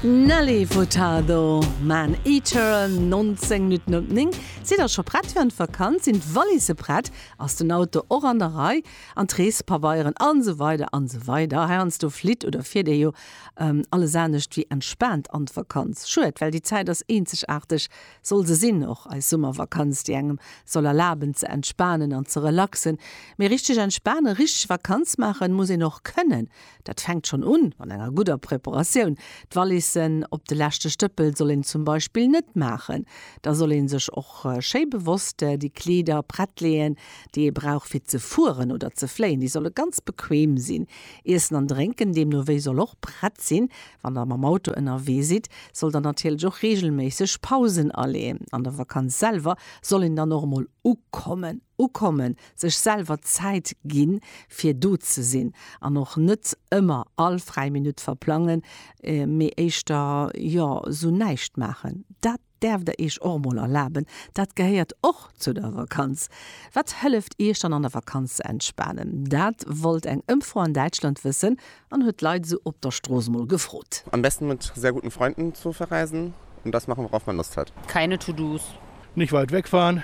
Nelly Furtado, Man Eater, 19 Minutten op 9. Sidd der scho prett fir an d'Vakanz? Sinn d'Wallisse prett? Ass den Auto och an der Rei? An d'Reespabeieren? An esou weider an esou weider. Heiansdo flitt oder fiert ee jo alles anescht wéi entspaant an d'Vakanz. Schued, well déi Zäit ass eenzegaarteg, soll se sinn, och eis Summervakanz, déi engem soll erlaben ze entspanen an ze relaxen. Mee richteg entspanen, richteg Vakanz maachen, muss een och kënnen. Dat fänkt schonn un an enger gudder Preparatioun. D'Valissen op de leschte Stëppel soll een zum Beispill net maachen. Da soll ee sech och schéi bewosst déi Kleeder prett leeën, déi ee brauch fir ze fueren oder ze fléien. Déi solle ganz bequeem sinn. Iessen an Drénken deemno wéi soll och prett sinn. Wann der mam Auto ënnerwee sidd, sollt der natierlech och reegelméisseg Pausen aleeën. An der Vakanz selwer soll een dann och emol ukommen. Ukommen Sech selwer Zäit ginn, fir do ze sinn, an och net ëmmer all fräi Minutt verplangen, mee éischter, jo, sou näischt maachen. Dat däerft der iech och mol erlaben, dat gehéiert och zu der Vakanz. Wat hëlleft iech dann an der Vakanz ze entspanen? Dat wollt eng Ëmfro an Däitschland wëssen an huet d'Leit esou op der Strooss mol gefrot. Am besten mit sehr guten Freunden zu verreisen und das machen worauf man Lust hat. Keine To-dos. Nicht weit wegfahren,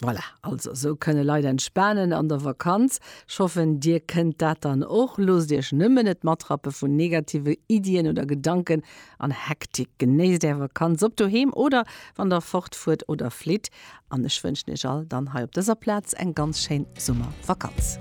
Voilà, also sou kënne Leit entspanen an der Vakanz. Ech hoffen dir kënnt dat dann och. Loosst iech nëmmen net matrappe vun negative Iddien oder Gedanken an Hektik. Genéisst är Vakanz, ob doheem oder wann der fort fuert oder flitt. An ech wënschen iech all dann hei op dëser Plaz eng ganz schéin Summervakanz.